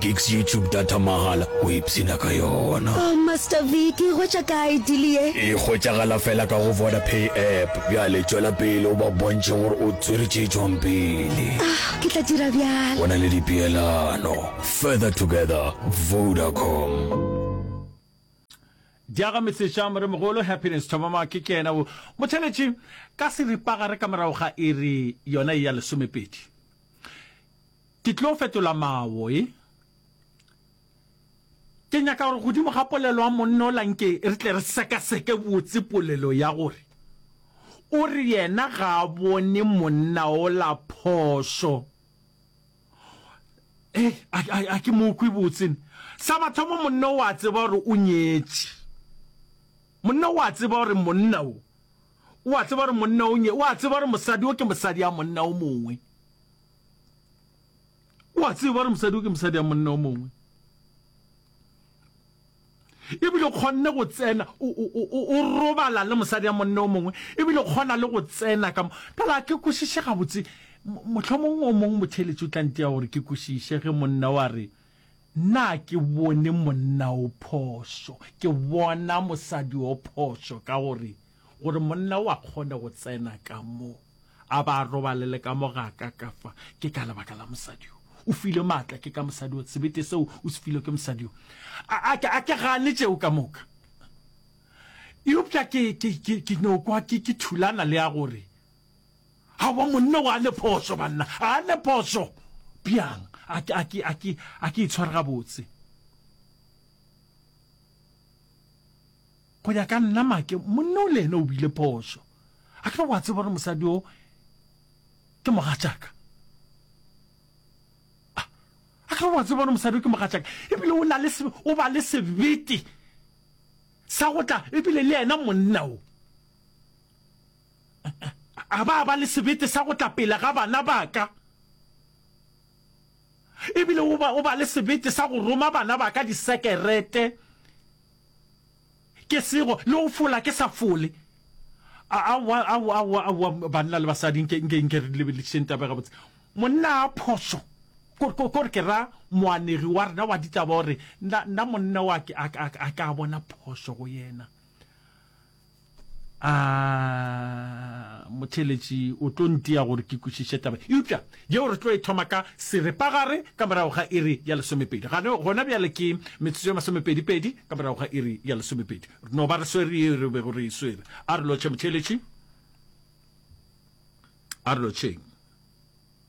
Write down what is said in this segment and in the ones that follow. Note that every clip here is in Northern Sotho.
Gigs YouTube data mahala o ipshina ka yona. Ohh Master V ke e hwetša kae deal ye? E hwetšagala fela ka go Vodapay app. Bjale tšwela pele o ba bontšhe gore o tswere tše tšwang pele. Ahh ke tla dira bjalo. Go na le dipeelano. Further together, Vodacom. Diaga Metsesha Moremogolo Happiness Thobama ke ke ena o mo theletše ka seripagare ka morago ga iri yona e ya lesomepedi. Ke tlo fetola mawo e. Ke nyaka gore godimo ga polelo ya monna ola nke re tle re sekaseke botse polelo ya gore o re yena ga a bone monna ola phošo. Hei, a, a, a ke mo kwe botse ne. Sa mathomo monna o a tseba gore o nyetše. Monna o a tseba gore monna o, o a tseba gore monna o nye, o a tseba gore mosadi o ke mosadi ya monna o mongwe. o a tseba gore mosadi o ke mosadi ya monna o mongwe ebile kgonne go tsena o robala le mosadi ya monna o mongwe ebile kgona le go tsena ka ka la ke kwešiše gabotse mohlomong o mongwe motheletši o tlante ya gore ke kwešiše ge monna wa re nna ke bone monna o phoso ke bona mosadi o phoso ka gore gore monna o a kgone go tsena ka mo a ba a robalele ka mo ga ka ka fa, ke ka lebaka la mosadi yo. O filwe maatla ke ka mosadi yo, sebete seo o se filwe ke mosadi yo. A, a, a ke gane tšeo ka moka. Eupša ke, ke, ke, ke no kwa ke, ke thulana le ya gore, Aowa, monna o a ne phošo, banna, a ne phošo. Bjang? A ke, a ke, a ke, a ke itshware gabotse. Go ya ka nna, Make, monna o le ene o bile phošo. A ke be wa tseba gore mosadi o ke mogatšaka? A, a ke be wa tseba gore mosadi o ke mogatšaka? Ebile o, na le se, o ba le sebete sa go tla, ebile le ena monna o a ba a ba le sebete sa go tla pele ga bana ba ka, ebile o ba, o ba le sebete sa go roma bana ba ka disekerete. Ke sego le go fola ke sa fole. Aowa, aowa, aowa, aowa, banna le basadi, nke, nke, nke re lebeledišeng taba ye gabotse. Monna a phošo, ko, ko, ko re ke ra moanegi wa rena wa ditaba o re, Nna, nna monna wa ke, a, a, a ka bona phošo go yena. a motheletši o tlo ntia gore ke kwešiše taba eupša yeo re tlo e thoma ka seripagare ka morago ga iri ya lesomepedi gane gona bjale ke metsotso ya masomepedipedi ka morago ga iri ya lesomepedi no ba re swere yeo re bego re e swere a re lotšhe motheletši a re lotšheng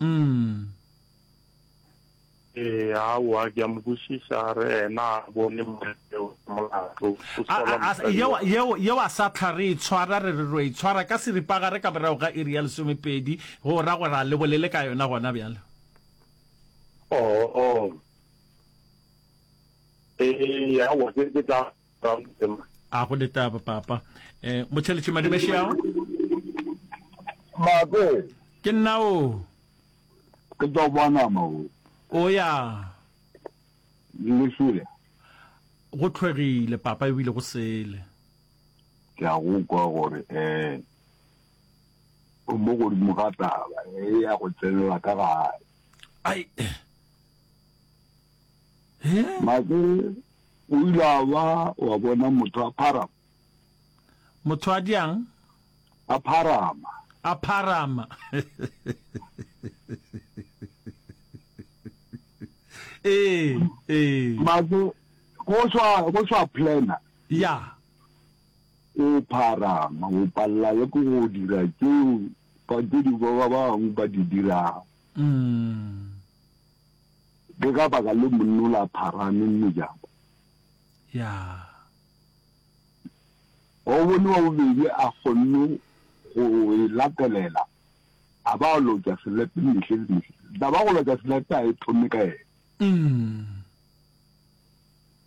Umm. Ee, aowa, ke a mo kwešiša, a re ena a bone mma yeo ya molato, o A, sola a, a, mosadi yeo, wa. yeo, yeo a sa hlwa re e tshwara, re re ro e tshwara ka seripagare ka morago ga iri ya lesomepedi, go ra gore a le bolele ka yona gona bjale. Oo. Ee, aowa, ke, ke tla a go letaba papa eh motheletše madimešeago mabe ke nna o ke tlo bona mo o ya le sule go tlhwegile papa ebile go sele ke a go kwa gore eh o mo godimo ga taba e ya go tsenela ka gae ai Make o ile a ba wa bona motho a pharama. Motho a diang? A pharama. A pharama. Ee, ee. Make go swa go swa plana. Ya. O pharama, o palla le go dira tseo ba di ba bang ba di dirago. Mm. Ke ka baka le monnola a pharame mmejako. Yaa. Wa o bone wa bobedi a kgonne go e latelela, a ba a lotša selepe mehle le mehle. Da ba go lotša selepe a e thome ka ena. Umm.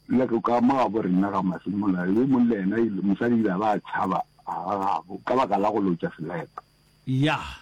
Le go ka mo gabo rena ga masimola, yo mong le ena ile, mosadi ile a ba a tšhaba a ga gabo ka baka la go lotša selepe. Yaa.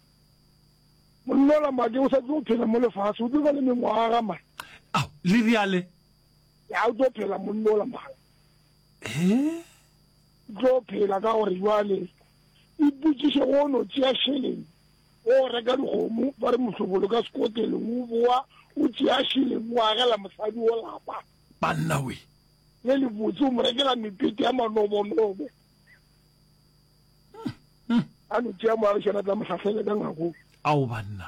Monna la make o sa tlo phela mo lefase, o tlo ba le mengwaga man. Ao, le riale? Ya o tlo phela monna la mang. Eh? Tlo phela ka gore jwale iputsiše go no tšea šeleng o reka dikgomo ba re mohlobolo ka sekoteleng o boa o tšea šeleng o agela mosadi o lapa banna we le lebotse o mo rekela mepete ya manobonobo a no tšea moagišana tla mohlahlele ka ngako ao banna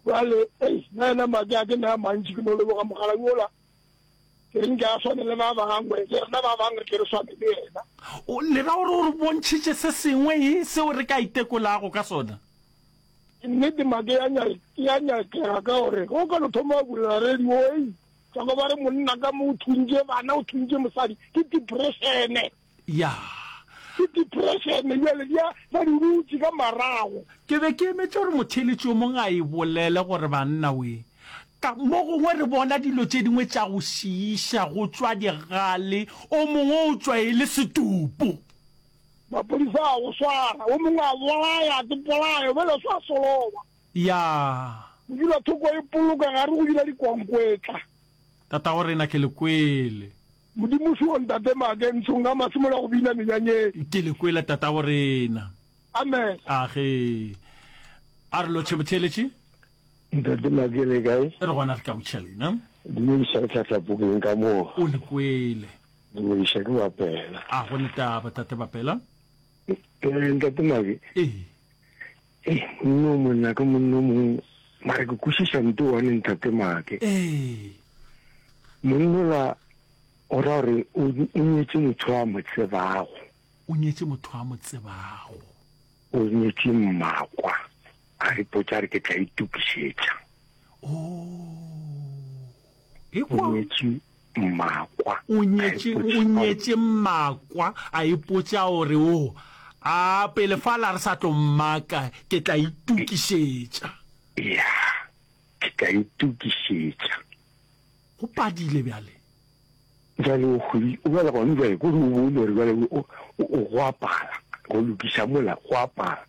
jale ei na yena madi a ke naya mantši ke no leboga mogala yola ke reng ke a swane le ba bangwe ke rena ba bangwe ke re swane le yena o lera gore o re bontšhitše se sengwe e seo re ka itekolago ka sona nnete make ya nyakega ka gore go ka no thoma go bulela radio ei Tsoko ba re monna ka mo o thuntše bana o thuntše mosadi ke depressione. Ya. Ke depressione bjale di a ba di dutše ka marago. Ke be ke emetše gore motheeletši yo mongwe a e bolele gore banna we ka mo gongwe re bona dilo tše dingwe tša go šiiša go tšwa digale o mongwe o tšwa e le setupo. Maphodisa a go swara o mongwe a bolaya ke polayo bjale o sa soloba. Yaa! Go dula thoko e poloka gare go dula dikwankwetla. Tatago rena ke le kwele. Modimo soo ntate make ntsho nka masimola go bina menyanyeng. Ke le kwele tatago rena. Amen. Age. A re lo tšhebotheletše. Ntate make le kae? Re gona re ka go tšhelena. Dumediša re tlhatla pokeng ka mo. O le kwele. Dumediša ke bapela. A go ne taba tate bapela. Ee ntate make. Ee. Ee, monna o monna ke monna o mongwe, mara ke kwešiša nto one ntate Maake. Ee. Monnola o ra gore o o nyetše motho a mo tsebago. O nyetše motho a mo tsebago. O nyetše mmakwa, a re potša a re ke tla itokišetša. Oo. O nyetše mmakwa, a ipotša. O nyetše mmakwa, a ipotša gore o. A pele fa la re sa tlo mmaka, ke tla itokišetša. Ya, ke tla itokišetša. Go padile bjale. Bjale o hwedi, o bjale gone bjale, ko re o bone gore bjale o, o go a pala, go lokiša mola, go a pala.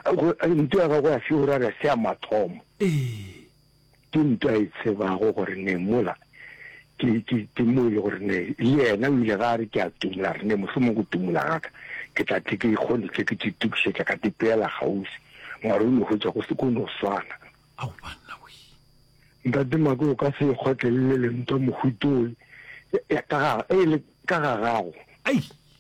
Go, nto ya gagwe ya se o ra re se ya mathomo. Ee. Ke ntwa e tsebago gore ne mola ke, ke, ke mo e le gore ne le yena o ile ga re ke a tumola re ne mohlomong go tumola ga ka ke tla tle ke ikgone tle ke titukišetša ka tepeela kgauswi mara o no hwetša go se ko no swana. Ao banna we. Ntate Mako o ka se e kgotlelele le ntwa mohuto e, e, ka ga, e le ka ga gago. Ai,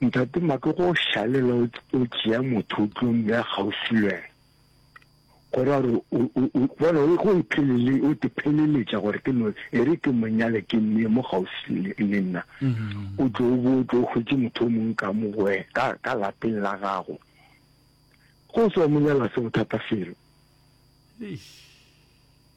Ntate Maka go šalela o tšea motho o tlo mmeya kgauswi le wena gore a re bona o go iphelele o te pheleletša gore ke no e re ke monyale ke mmeye mo kgauswi le nna mm-hmm. o tlo o bo o tlo o hwetše motho o mongwe ka mo goe ka ka lapeng la gago go se wa monyala se bothata selo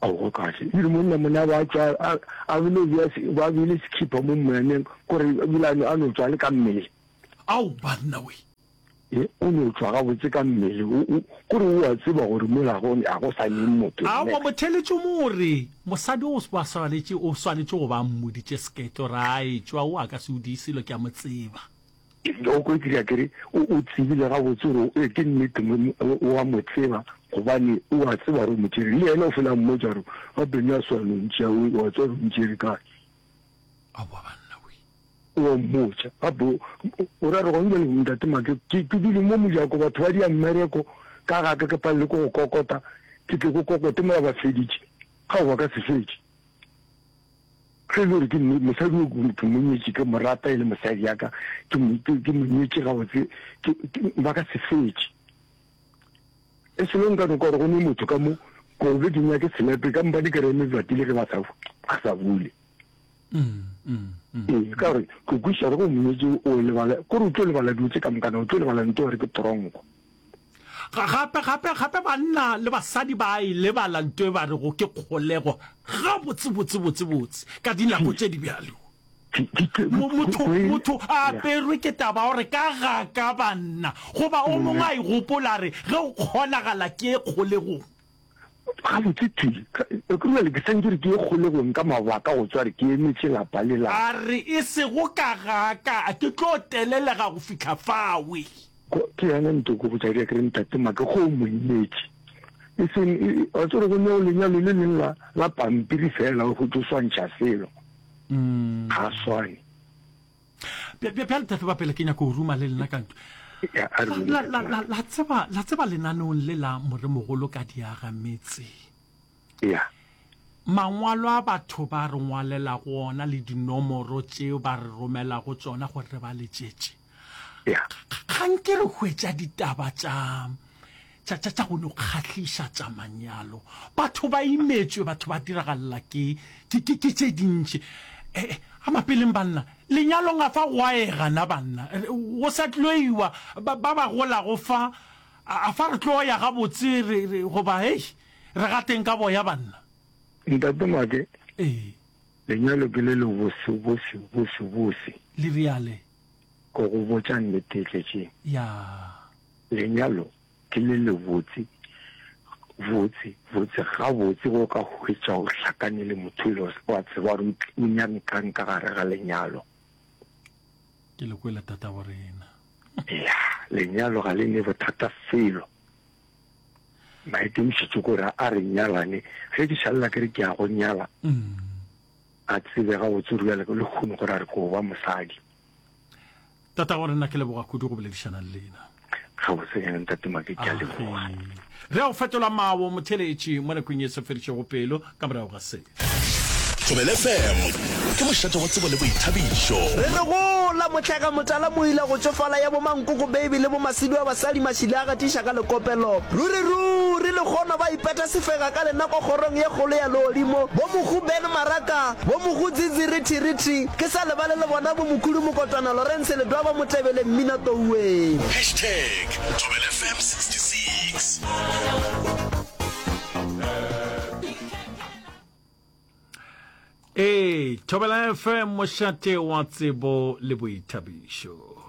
Ao, go kahle. Ebile monna mona wa tšwa a, a bile bja, ba bile sekhipa mo moyaneng, gore ebile a, a no tšwa le ka mmele. Ao, banna we! Ye, o no tšwa gabotse ka mmele, o, o, gore o a tseba gore mola go, a go sa neng motho. Ao, wa mo theletše mo o re, Mosadi o, ba swanetše, o swanetše go ba a mmoditše seketlo, ra a etšwa, o a ka se o diye selo, ke a mo tseba. O ko ekile ke re o tsebile ga botse gore e ke nnete wa mo tseba gobane o a tseba gore o mo tšere le ene o fela mmo jaro ga beno ya swa lontši a o a tswa gore o mo tšere ka a bua banna we o mmotša a bo o ra re go nje le ntate ma ke ke ke dile mo mo jako batho ba dia mmereko ka ga ke ke pa le go kokota ke ke go kokote mo ba feditše ga o ba ka se fetše Ge e le gore ke mo, mosadi o ke, ke mo nyetše, ke mo rata e le mosadi ya ka, ke mo, ke, ke mo nyetše gabotse, ke, ke, ba ka se fetše. E selo nka no kwa gore go ne motho ka mo, ko be ke nyake senepe, ka mpa di ke reme bjati le ge ba sa, ba sa bule. Ee, ka gore ke kwešiša gore go mo nyetše o lebala, kore o tlo lebala dilo tše ka mokana, o tlo lebala ntwa gore ke tronko. Gape, gape, gape banna le basadi ba a e lebala nto e ba rego ke kgolego gabotse, botse, botse, botse, ka dinako tše di bjalo. Mo, motho, motho a aperwe ke taba ya gore ka ga ka banna, goba o mongwe a e gopola a re, ge o kgonagala ke ye kgolegong. Gabotse thwi, Ekurwele ke sentše re ke ye kgolegong ka mabaka go tswa re ke emetše lapa le la. A re, E sego ka ga ka, a ke tlo telelega go fihla fawe. Go, ke yena ntoko go tšadia, ke re, Ntate Maka, go mo imetše. E seng, e, e, wa tseba gore go ne go lenyalo le leng la, la pampiri feela, go tlo swantšha selo. Ga a swane. bjale tate ba pele ke nyako o ruma le lena ka ntlo la tseba la tseba lenaneong le la moremogolo ka diaga metse ya mangwalo a batho ba re ngwalela go ona le dinomoro tseo ba re romela go tsona gore re ba letšetše ga nke re hwetša ditaba tša tša tša tša go no kgahliša tša manyalo batho ba imetšwe batho ba diragalela ke ke ke ke tše dintši eh, eh a mapeleng banna lenyalong a fa goaega na banna go sa tloiwa ba ba golago fa a fa re tlo ya ga botse re re goba hey re ga teng ka boya banna ntate make eh lenyalo ke le le bose bose bose bose le riale go go botša nnete tletše ya yeah. Lenyalo ke le lebotse botse botse gabotse ge o ka hwetša o hlakane le motho le o a tseba gore o nyame kang ka gare ga lenyalo. Ke le kwele tata wa rena. Ya, lenyalo ga le ne bothata felo. Maikemišetšo ke gore a re nyalane ge ke šalela ke re ke ya go nyala a tsebe gabotse o ruyaleka le kgone gore a re ke go ba mosadi. tata gore nna ke leboga kudu go boledišana le lena gabotse ene ntate make ke a leboga re a go fetola mawo motheletši mo nakong e se fedišego pelo ka morago ga se tobele fm ke mošate wa tsebo le boithabišo re le gola motlhega motala moila go tsofala ya bomankoko baby le bomasidu a basadi mašile a gatiša ka lekopelo ruri ruri le kgono ba ipeta sefega ka lenako kgorong ye kgolo ya leodimo bo mogu ben maraka bo mogu dzidzirithirithi Ke sa lebale le bona bo Mokhudu Mokotwana, Lawrence Ledwaba, Motebele, Mmina Touweng. Hashtag Thobela FM 66. Ee, Thobela FM, mošate wa tsebo le boithabišo.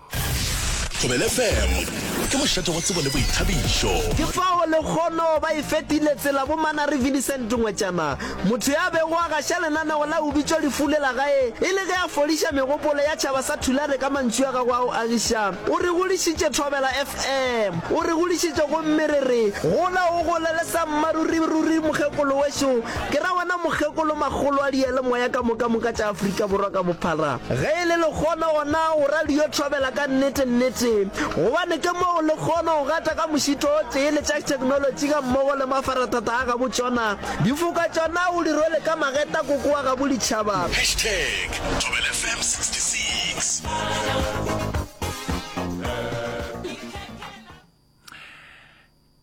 Thobele FM ke mošate wa tsebo le boithabišo. Ke fao lekgono ba e fetile tsela bo Manary Vinicent Ngwetšana, motho ya bego a gaša lenaneo la O Bitšwa Lefu le la gae e le ge a fodiša megopolo ya tšhaba sa Thulare ka mantšu a gagwe a go agiša. O re godišitše Thobela FM, o re godišitše gomme re re, Gola o gole le sa mmaruri ruri mokgekolo wešo. Ke ra wena mokgekolo makgolo a diyalemoya ka mokamoka tša Afrika Borwa ka bophara. Ge e le lekgono gona o ra le yo thobela ka nnete nnete gobane ke mo o lekgono go gata ka mošito o tee le tša theknolotši ga mmogo le mafarathata a gabo tšona difoka tšona o di rwele ka mageta koko wa gabo ditšhaba. Hashtag Thobela FM 66.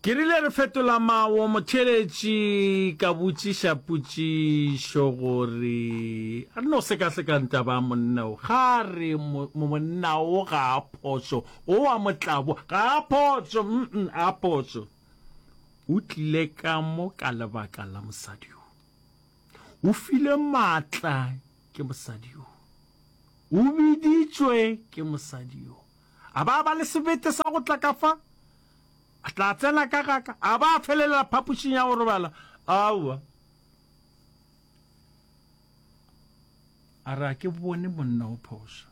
Ke rile re fetola mawo motheeletši ka botšiša potšišo gore a re no sekasekang taba monna o ga a re monna o ga a phošo o wa motlabo ga a phošo mm a phošo o tlile ka mo ka lebaka la mosadi yo o file matla ke mosadi yo o biditšwe ke mosadi yo a ba ba le sebete sa go tla ka fa A tla tsena ka ga ka? A ba a felelela phapošing ya go robala? Aowa. A re a ke bone monna o phoša.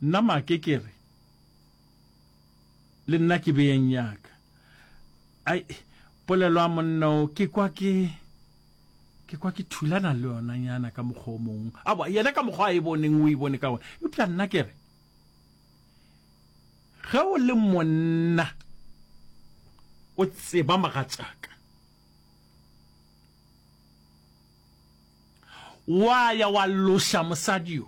Nna make ke re, Le nna ke beyeng ya ka. Ai, polelo ya monna o, ke kwa ke, ke kwa ke thulana le yona nyana ka mokgwa o mongwe. Aowa, yena ka mokgwa a e boneng o e bone ka wona. Eupša nna ke re, Ge o le monna, o tseba mogatšaka, wa ya wa loša mosadi yo.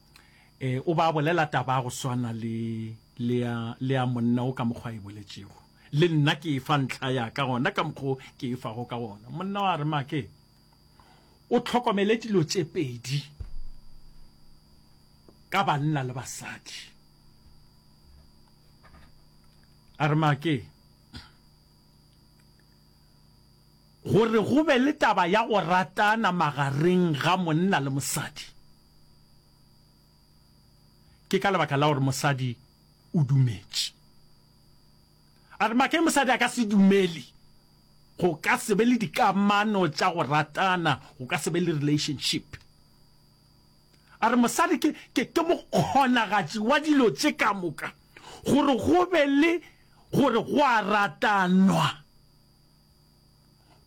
E, o ba bolela taba ya go swana le, le ya, le ya monna o ka mokgwa e boletšego. Le nna ke e fa ntlha ya ka gona ka mokgwa ke e fago ka gona. Monna wa re, Make, o tlhokomele dilo tše pedi ka banna le basadi. A re, Make, gore go be le taba ya go ratana magareng ga monna le mosadi, Ke ka lebaka la gore mosadi o dumetše. A re make mosadi a ka se dumele, go ka se be le dikamano tša go ratana, go ka se be le relationship. A re mosadi ke, ke, ke mokgonagatši wa dilo tše ka moka, gore go be le gore go a ratanwa,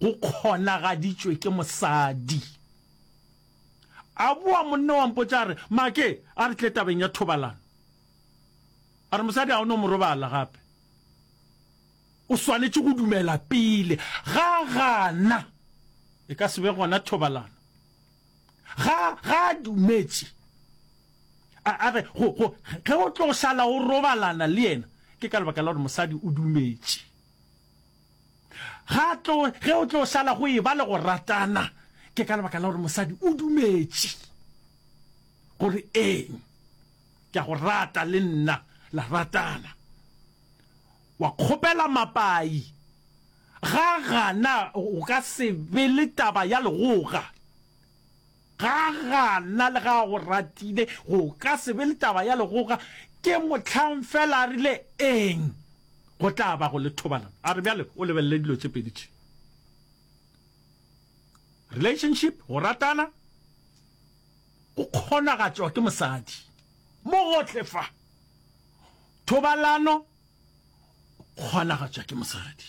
go kgonagaditšwe ke mosadi. A boa monna wa mpotša a re, Make, a re tle tabeng ya thobalano. A re, Mosadi ga o no mo robala gape. O swanetše go dumela pele. Ga gana, e ka se be gona thobalano. Ga, ga a dumetše. A, a re, go, go, ge o tlo šala o robalana le yena, ke ka lebaka la gore mosadi o dumetše. Ga tlo, ge o tlo šala go e ba le go ratana, ke ka lebaka la gore mosadi o dumetše gore eng, ke a go rata le nna, la ratana. Wa kgopela mapai, ga gana go ka se be le taba ya legoga. Ga gana le ge a go ratile, go ka se be le taba ya legoga. Ke mohlang fela a rile, Eng? Go tla ba go le thobalano. A re, Bjale o lebelele dilo tše pedi tše. Relationship, go ratana, go kgonagatšwa ke mosadi. Mo gohle fa. Thobalano, go kgonagatšwa ke mosadi.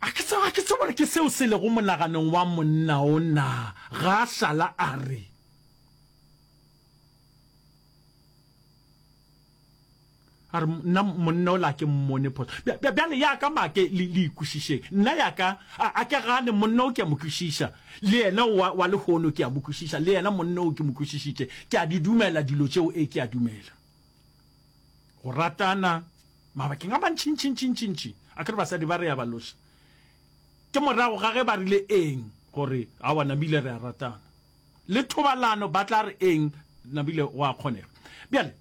a ke tseba ke tseba ke seo se lego monaganong wa monna o na ga sala a re a re nna monna o la ke mmone phoso bjale ya ka make le le ikwešišeng nna ya ka a ke gane monna o ke a mo kwešiša le yena wa wa lehono ke a mo kwešiša le yena monna o ke mo kwešišitše ke a di dumela dilo tšeo e ke a dumela go ratana mabakeng a mantšintšintšintšintši a kere basadi ba re ya ba loša ke morago ga ge ba rile eng gore a wa namile re a ratana le thobalano ba tla re eng namile wa kgonega bjale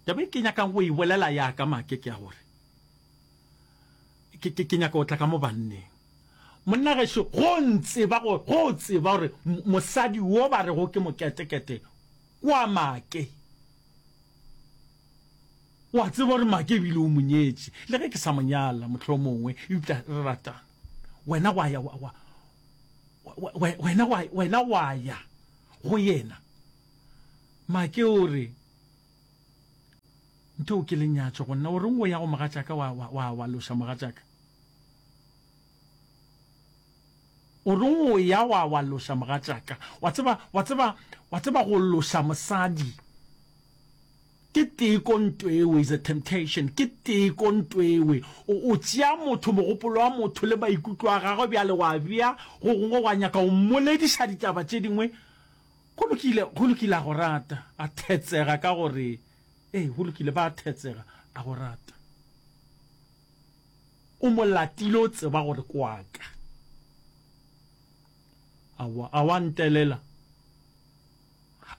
taba e ke nyakang go e bolela ya ka make ke ya gore ke ke nyaka go tla ka mo banneng monna gešo go ntseba go go tseba gore mosadi wo ba rego ke moketekete O a Make. O a tseba gore Make e bile o mo nyetše, le ge ke sa mo nyala, mohlomongwe, eupša re ratana. Wena wa ya, wa, wa, wa, wa, wena wa, wena wa ya go yena. Make o re, Ntheo ke lenyatšo go nna. O reng o ya go mogatšaka wa, wa, wa, wa loša mogatšaka? O reng o ya wa, wa loša mogatšaka? Wa tseba, wa tseba, wa tseba go loša mosadi ke teko ntwewe, is a temptation, ke teko ntwewe. O, o tšea motho, mogopolo wa motho le maikutlo a gagwe bjale wa bea go gongwe, wa nyaka go mmolediša ditaba tše dingwe. Go lokile, go lokile, a go rata. A thetsega ka gore, Ee, go lokile, ba a thetsega, a go rata. O mo latile o tseba gore ke wa ka. Aowa, a wa ntelela?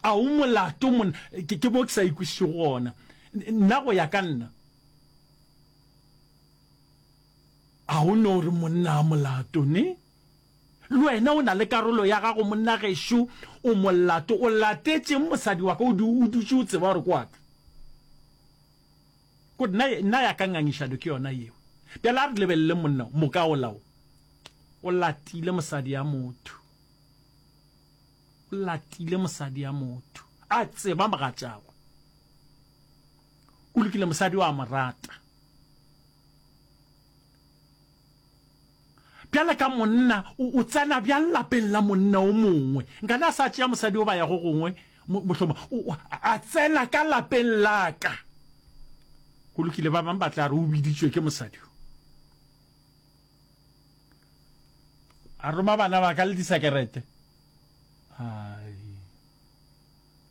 A o molato monna? Ke, ke mo ke sa ikwešišego gona. Nna go ya ka nna. A o no re monna a molato, ne? Le wena o na le karolo ya gago monna gešo, o molato. O latetšeng mosadi wa ka? O, o dutše o tseba gore ke wa ka. Good, nna, nna ya ka ngangišano ke yona yeo. Bjale a re lebeleleng monna o, moka ola o, o latile mosadi ya motho. O latile mosadi ya motho. A tseba mogatšagwe. Go lokile, mosadi o a mo rata. Bjale ka monna, o, o tsena bjang lapeng la monna o mongwe? Nkane a sa tšea mosadi goba ya go gongwe, mo, mohloma, o, o, a tsena ka lapeng la ka. Go lokile, ba bang ba tla re o biditšwe ke mosadi o. A roma bana ba ka le disekerete. Ai.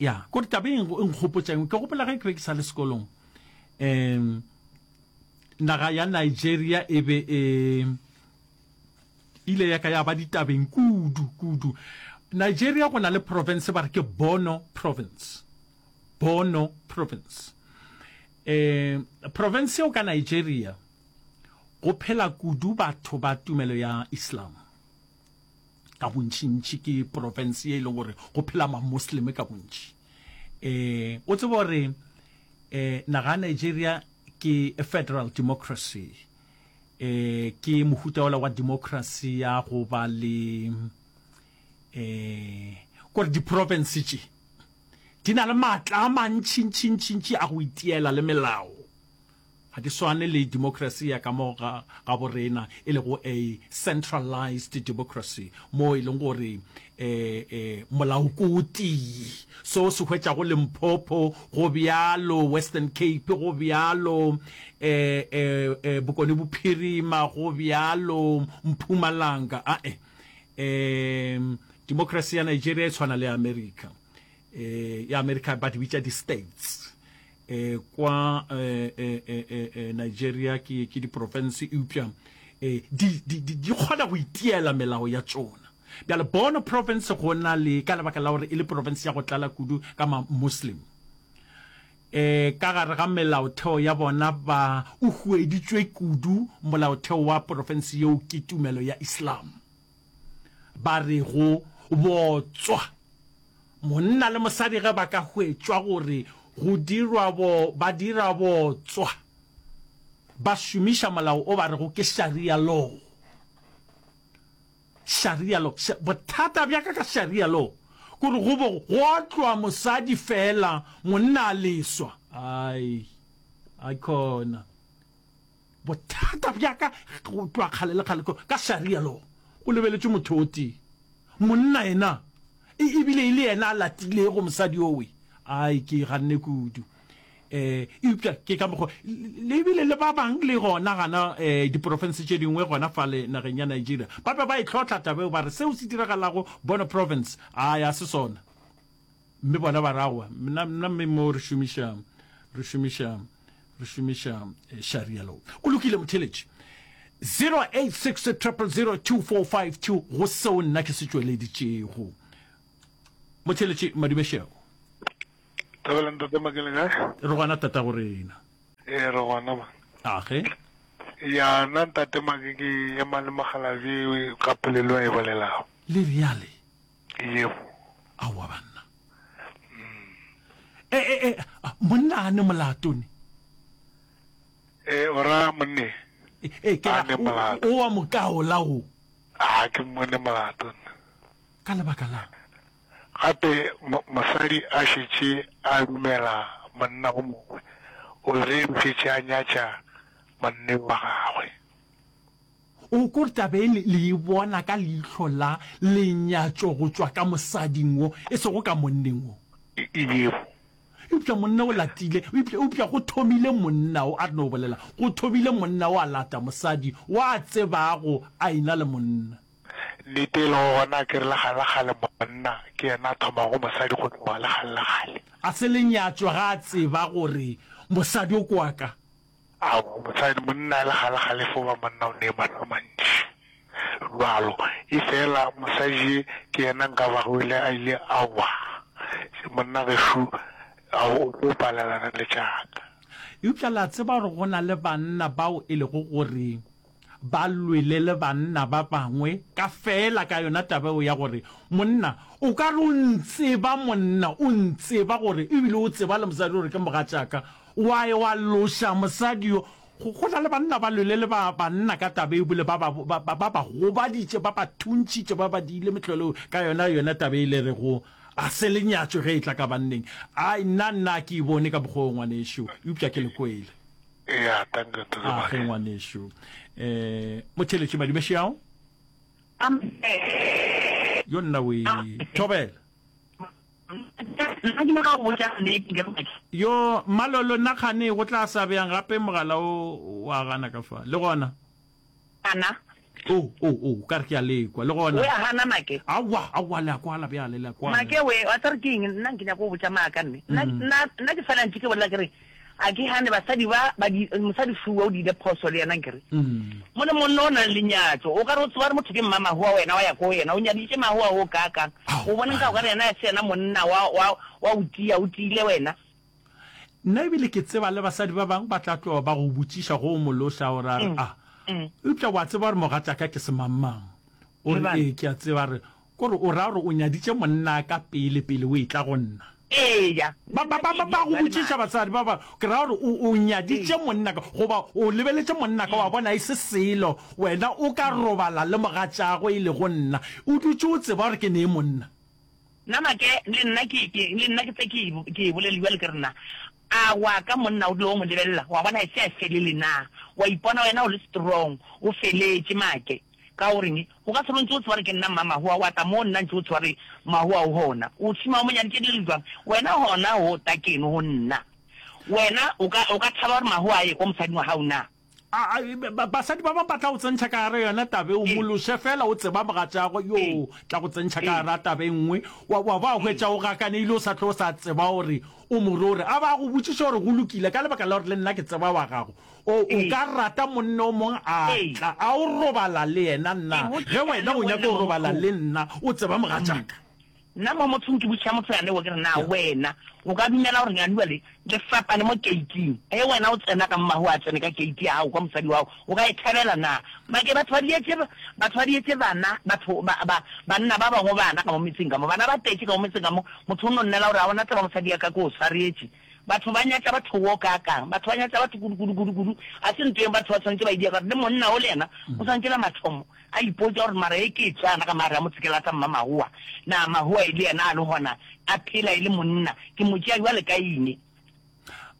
Ya, kore taba e e nkgopotša eng, ke gopola ge ke be ke sa le sekolong, um naga ya Nigeria e be e ile ya ka ya ba ditabeng kudu kudu. Nigeria go na le province ba re ke Borno province, Borno province. Um province eo ka Nigeria go phela kudu batho ba tumelo ya Islam, ka bontšintši ke porofense ye e leng gore go phela mamosleme ka bontši um o tseba gore um eh, naga ya nigeria ke federal democracy um ke mohuta ola wa democracy ya go ba le um kore diporofense tše di na le maatla a mantšintšintšintši a go itiela le melao Ga ke swane le democracy ya ka mo gaborena e lego a centralized democracy moo e leng gore molao ke o tee. Se o se hwetšago Limpopo go bjalo, Western Cape go bjalo, Bokone Bophirima go bjalo, Mpumalanga ae. Democracy ya Nigeria e tshwana le ya America. Ya America ba di bitša di-states. E kwa e, e, e, e, Nigeria ke, ke diprofense eupša e, di, di, di, di kgona go itiela melao ya tšona bjale Borno province go na le ka lebaka la gore e le province ya go tlala kudu ka ma-muslim e ka gare ga melaotheo ya bona ba o hueditšwe kudu molaotheo wa porofense yeo ke tumelo ya islam ba re go botswa monna le mosadi ge ba ka hwetšwa gore go dirwa bo ba dira botswa ba šomiša molao o ba rego ke sharia law sharia law bothata bja ka ka sharia law gore go bo go otlwa mosadi fela monna a leswa ai a khona Bothata bja ka go tloga kgale le kgale ka Sharia law, go lebeletšwe motho o tee, monna yena, e ebile e le yena a latilego mosadi yowe. Ai, ke ganne kudu. Um eupša ke ka mokgwa le ebile le ba bang le gona gana um diporofense tše dingwe gona fale nageng ya Nigeria ba be ba e hlotla taba yeo, ba re seo se diragalago Borno Province, ai, ga se sona. Mme bona ba ra wa mna mna mme mo re šomiša re šomiša re šomiša eh, sharia law. O lokile motheletši. 0860002452 go seo nna ke se tšweleditšego. Motheletši Madumešego. Thabela ntate makele kae Re gona tata go rena. ee re gona ba Age. ya nna ntate make ke ema le mogalabi ka polelo a e bolelago Le reale. Yebo. Aowa banna. E, e, e, monna a ne molato ne. E, o ra monne. E, e, ke ra, o wa mokaola o. A, ke mone molato ne. Ka lebaka la. Gape mosadi a šetše a dumela monna o mongwe, o re o šetše a nyatša monna wa gagwe. O ko tla be le e bona ka leihlo la lenyatšo go tšwa ka mosading wo, e sego ka monneng wo. E bego. Eupša monna o latile, eupša go thomile monna wo, a re no bolela, go thomile monna wo a lata mosadi wo a tsebago a e-na le monna. Nnete e lego gona ke re, legalekgale monna ke yena a thomago mosadi go tloga legalekgale. A se lenyatšwa ga a tseba gore mosadi o ke wa ka? Aowa mosadi, monna a le ga le gale fo ba monna o nee maano a mantši bjalo, efela mosadi ye ke yena nka ba go ile a ile a wa se monna gešo a o tlo palelana le tša ka. Eupša le a tseba gore go na le banna bao e lego gore. ba lwele le banna ba bangwe ka feela ka yona taba eo ya gore monna o ka re o ntseba monna o ntseba gore ebile o tseba le mosadi gore ke mogatšaka wa e wa loša mosadi yo go go na le banna ba lwele le ba banna ka taba e bile ba ba ba ba ba ba gobaditše ba ba thuntšhitše ba ba diile metlholo ka yona yona taba e le re go a se lenyatšo ge e tla ka banneng ai nna nna ke e bone ka bokgoo ngwanešu eupša ke le kwele Eya, tanka to ke a ge ngwanešu um motheletši madumešeao yo nna o ithobela yo malolo nna kgane go tla sa bjang gape mogala o wa gana ka fa le gona Ana. Oh, oh, oh, o ka re ke a le kwa, le gona. We a gana, Make? Aowa, aowa, le a kwala bjale, le a kwala. Make, we, wa tseba gore ke eng? Nna nke nyaka go botša maaka, mme. Nna, nna, nna ke fela ntše ke bolela ke re, a ke gane basadi ba, ba di, mosadi Fua o di ile phoso le yena, nke re. Mo le monna o nang le nyatšo, o ka re o tseba gore motho ke mmamahoa wena, wa ya ko yena, o nyaditše mahoa wo kaakang, o boneng ka gore yena a se yena monna wa, wa, wa o tia, o tiile wena? Nna e bile ke tseba le basadi ba bang ba tla tloga ba go botšiša go o mološa gore a re a eupša wa tseba gore mogatšaka ke semangmang. O re ee ke a tseba a re ko re o ra gore o nyaditše monna ka pele pele o etla go nna. Eya. Ba ba ba ba go botšiša basadi ba ba ke ra gore o o nyaditše monna ka goba o lebeletše monna ka wa bona e se selo wena o ka robala le mogatšago e lego nna o dutše o tseba gore ke ne e monna. Na make le nna ke, ke, le nna ke tse ke, ke e bolele bjale, ke re, Na a wa ka monna o dula o mo lebelela, wa bona, e se a felele? Na wa ipona wena o le strong, o feletše, make? Ka o reng? O ka se re o ntše o tseba gore ke nna mma Mahoa, wa tla mo nna ntše o tseba gore Mahoa o gona. O tshuma o mo nyaditše dilo bjang? Wena gona o ta keno go nna. Wena o ka, o ka thaba gore Mahoa a ye kwa mosading wa gago na? A, a, ba, basadi ba bangwe ba tla go tsentšha ka gare yona tabe o mološe fela o tseba mogatšago yo tla go tsentšha ka gare a tabe nngwe wa, wa ba hwetša o gakaneile o sa tlo o sa tseba gore o morore a ba go botšiša gore go lokile ka lebaka la gore le nna ke tseba wa gago o, o ka rata monna o mongwe a tla a o robala le yena nna ge wena o nyaka go robala le nna o tseba mogatšaka Nna mo mothong ke botšiša motho yane wo, ke re, Na wena o ka dumela gore leanua le, le fapane mo keiting? Ge wena o tsena ka mo mahu a tsene ka keiti ya gago kwa mosadi wa gago, o ka e thabela na? Make batho ba dietše, batho ba dietše bana, batho ba, ba, banna ba bangwe bana ka mo metseng ka mo, bana ba tetše ka mo metseng ka mo, motho o no nnela gore, A bona tseba mosadi ya ka ke o swaretše. Batho ba nyatša batho wo kaakang! Batho ba nyatša batho kudu, kudu, kudu, kudu. Ga se nto yeo batho ba swanetše ba e diega, gore le monna wo le yena o swanetše la mathomo, A ipotša gore, Mara e ke e tsaya na ka maare a motshekelata mmamahowa? Na mahowa e le yena a le gona a phela e le monna? Ke mo tšea bjale kaine?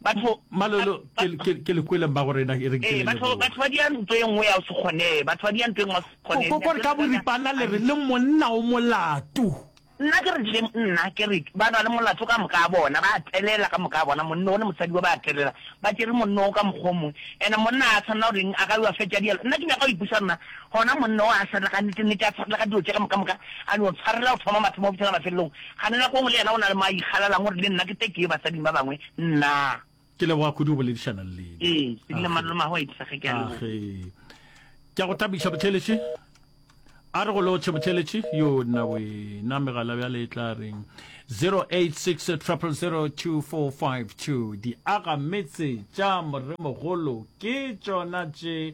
Batho, Malolo, ke, ke, ke le kwele mmago rena, e re nke ee, le batho, leboge. batho ba dia nto e nngwe ya go se kgonee. Batho ba dia nto e nngwe ya go se Ko, kgonee. ko, ko re ka boripana le re le monna o molato. Nna ke rile, Nna ke rile, ba rwale molato ka moka a bona, ba telela ka moka a bona, monno wo le mosadi wo ba telela, ba tšere monno wo ka mokgwa o mongwe. Ene monna a swanela gore eng, a ka yo a fetša dialo? Nna ke nyaka go ipuša nna, gona monna wo a swanela ka nnete, nnete a tshwarela ka dilo tše ka moka moka, a no tshwarela go thoma mathomo go fihlela mafelelong. Kgane nako nngwe le yena o na le mo a ikgalelang gore le nna ke te ke ye basading ba bangwe, nna. Ke leboga kudu go boledišana le lena. Ee, ke dile mano mago a itisa ge ke a leboga. Ke a go thabiša botheletši. A re go lotšhe botheletši yo nna wena megala bjale e tla reng 086 000252 diaga metse tša moremogolo ke tšona tše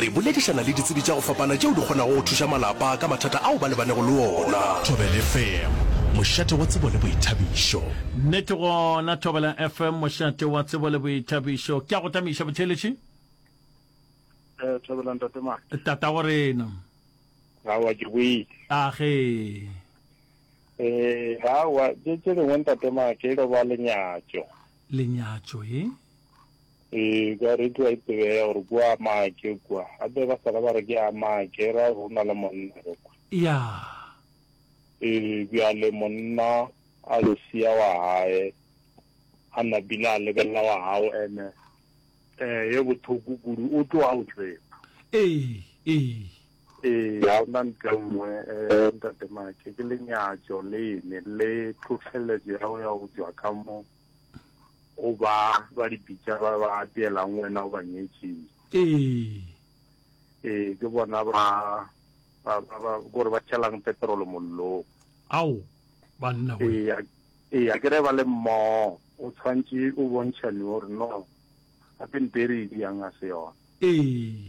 Re boledišana le ditsebi tša go fapana tšeo di kgonago go thuša malapa ka mathata ao ba lebanego le ona. Thobela FM, mošate wa tsebo le boithabišo. Nnete gona, Thobela FM, mošate wa tsebo le boithabišo. Ke a go tamiša botheeletši. Eh, Thobela ntate ma. Tatago rena. Awa ke boile. A ge. Eh, awa tše tše dingwe ntate ma ke lo ba lenyatšo. lenyatšo e? Ee, ka reti wa itsebea gore kua a maake kua. Gape ba sala ba re ke a maake, e ra gore o na le monna ge kua. Ya. Ee, bjale monna a lo sia wa gae, a napile a lebelela wa gago, ene, ee, ye bothoko kudu, o tloga o tseba. Ee, ee. Ee, ga ona ntle nngwe, eh, Ntate Make, ke lenyatšo lene, le tlhohleletšo ya go ya go tšwa ka mo go ba ba di bitša ba ba apeelang wena o ba nyetšeng. Ee. Ee, ke bona ba, ba, ba, ba, gore ba tšhelang petrolo mollong. Ao, banna we. Ee, a- ee, a ke re ba le mmogo, o tshwantše o bontšhane gore no, gape nto e re e diang ga se yona. Ee.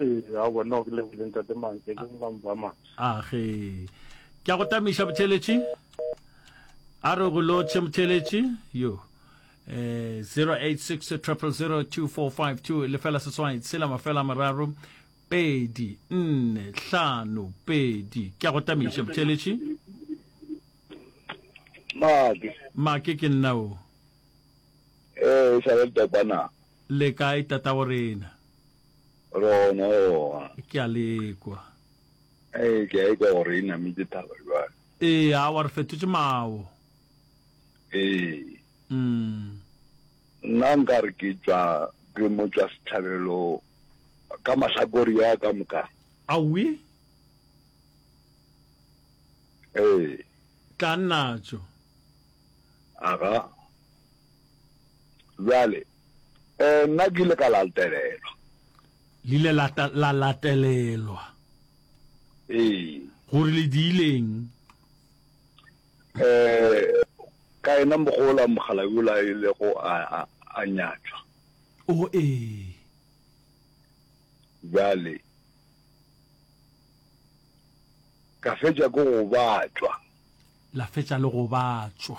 Ee, a bona o ke lebile ntate Mantle ke ba mpa masa. A ge. Ke a go tamiša botheletši. A re go lotšhe motheletši. Yo. Eh 086 000 2452 lefela seswai tshela mafela mararo pedi nne hlano pedi ke a go tamiša botheletši make make ke nna o ee e sa le le kae tata go rena Rona oa. Ke a le ekwa. Ee, ke a ekwa gore e namitše thaba jwale. Ee, awa re fetotše mawo. Ee. Mm. Nna nka re ke tšwa ke mo tšwa sethabelo ka mahlakori a ka moka. Awi. Ee. Tla nnatšo. Aga. Jwale. Ee, nna ke ile ka latelelwa. Le ile la, la latelelwa. Ee. Gore le diileng? Ee, ka ena mogola mogala yola e lego a, a, a nyatšwa. O ee. Bjale ka fetša ke go batšwa. La fetša le go batšwa.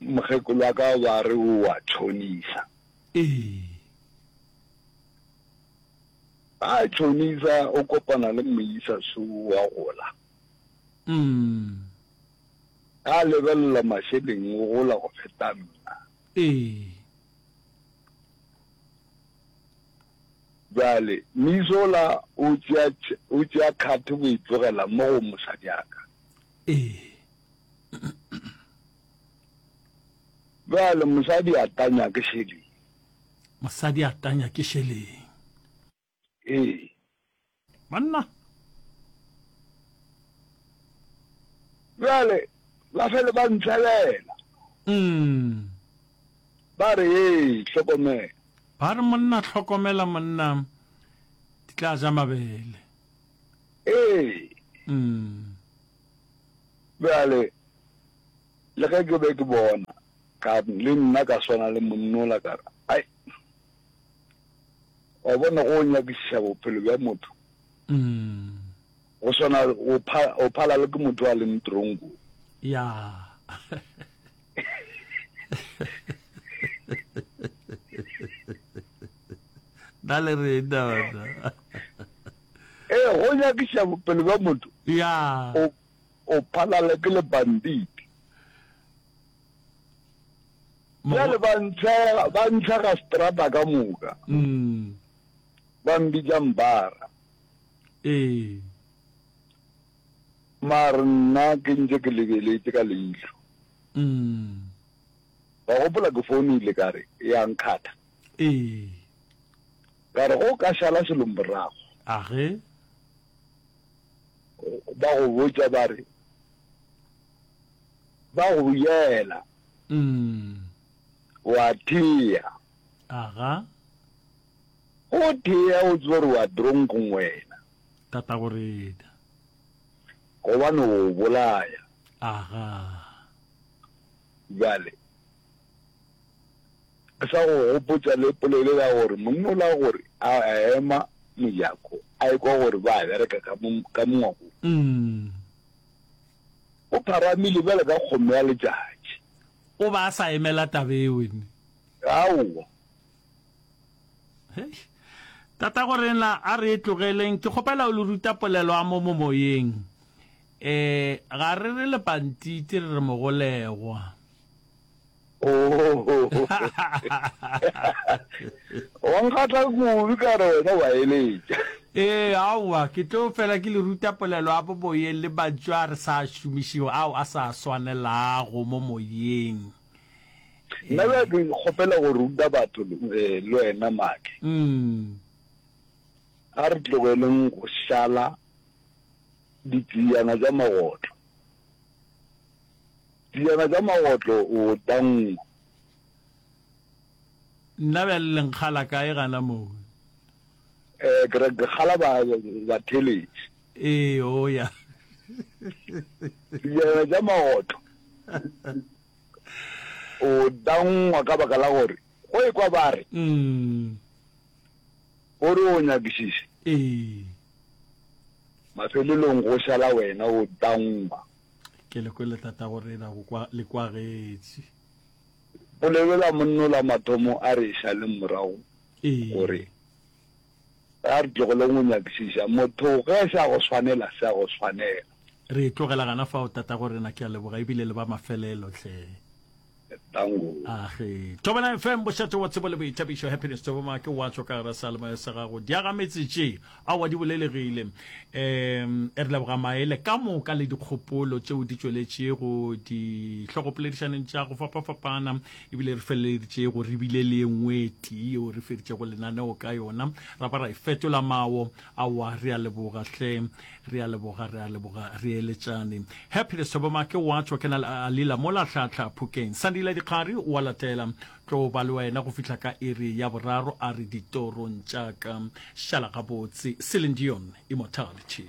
Mokgekolo wa ka ba re o a tšhonisa. Ee. A tšhonisa o kopana le moisa so wa gola. Mm. A lebelela mašeleng o gola go feta nna. Ee. Jale misola o tšea o tšea khathe go itlogela mo go mosadiaka. Ee. Bjale mosadi a tanya ke šeleng? Mosadi a tanya ke šeleng? Ee. Banna. Bjale ba fele ba ntshelela. Mm. Ba re ee, hlokomela. Ba re monna hlokomela monna di tla ja mabele. Ee. Bjale, le ge ke be ke bona, ka le nna ka swana le monna ola, ka re, Ai, wa bona, go nyakišiša bophelo bja motho go swana, o pha, o phala le ke motho a leng tronko. Ya. Na le reng, Dawata? Ee, go nyakiša bophelo bja motho Yeah. o, o phalala ke lebanditi. Bjale ba ntshega, ba ntshega strata ka moka, Mm. ba mbitša mbara. Ee. Mare nna ke ntse ke lebeletse ka leihlo. Mm. Wa gopola ke founile ka re ya nkgatha. Ee. Ka re, Go ka šala selomborago. A ge. Ba go botša ba re, Ba go yela. Umm. O a thea. Aga. Go thea o tseba gore o a dronkong wena. Tatago rena. Gobane o bolaya. Aga. Bjale. Ke sa go gopotša le polelo ya gore monna o la gore a ema mojako a ekwa gore ba bereka ka mongwakong. O pharamile bjale ka kgomo ya letšatši. O ba a sa emela tabe eo ene. Aowa. Hei. Tata gore na a re e tlogeleng ke kgopela o le ruta polelo a mo momoyeng. Eh ga re re lepantiti re re mogolegwa. wa nkgatla kudu ka re wena wa eletša ee aowa ke tlo fela ke le ruta polelo a boboyeng le mantšu a re sa šomišego ao a sa swanelago mo moyeng nna bja ke kgopela go ruta batho eh, le wena make mm. a re tlogeleng go šala ditseyana tša magotlo Dijana tša magotlo o tangwa. Nna bjale le nkgala kae gana moo? Eh, ke re ke kgala ba, ba theletše. Ee, o ya. Dijana tša magotlo o tangwa ka baka la gore go ekwa ba re mm. gore o nyakišiše ee. mafelelong go šala wena o tangwa ke le kwele tata go rena go kwa le kwagetsi o lebela monno la mathomo a re sa le morago gore a re tlogele go nyakisiša motho ge sa go swanela sa go swanela re tlogela gana fa o tata go rena ke a leboga ebile le ba mafelelo tlhe age tobela fm bošate wa tsebo le boithabišo happiness toboma ke wa tswa ka gara salema sa gago diaga metsetse a wa di bolelegile um e re leboga maele ka moka le dikgopolo tšeo di tšweletšego dihlogopoledišaneng tša go fapafapana ebile re feleleditše go rebile le ye nngwe tee yeo re feditšego lenaneo ka yona ra ba ra e fetola mawo Aowa, re a leboga hle. Re a leboga, re a leboga. Re eletšane. Happiness Thobomake wa tšwa ke na le Alila mola Tlhahla Phokeng. Sandile Dikgari wa latela. Tlo ba le wena go fihla ka iri ya boraro, a re ditorong tša ka. Šala gabotse. Celine Dion, Immortality.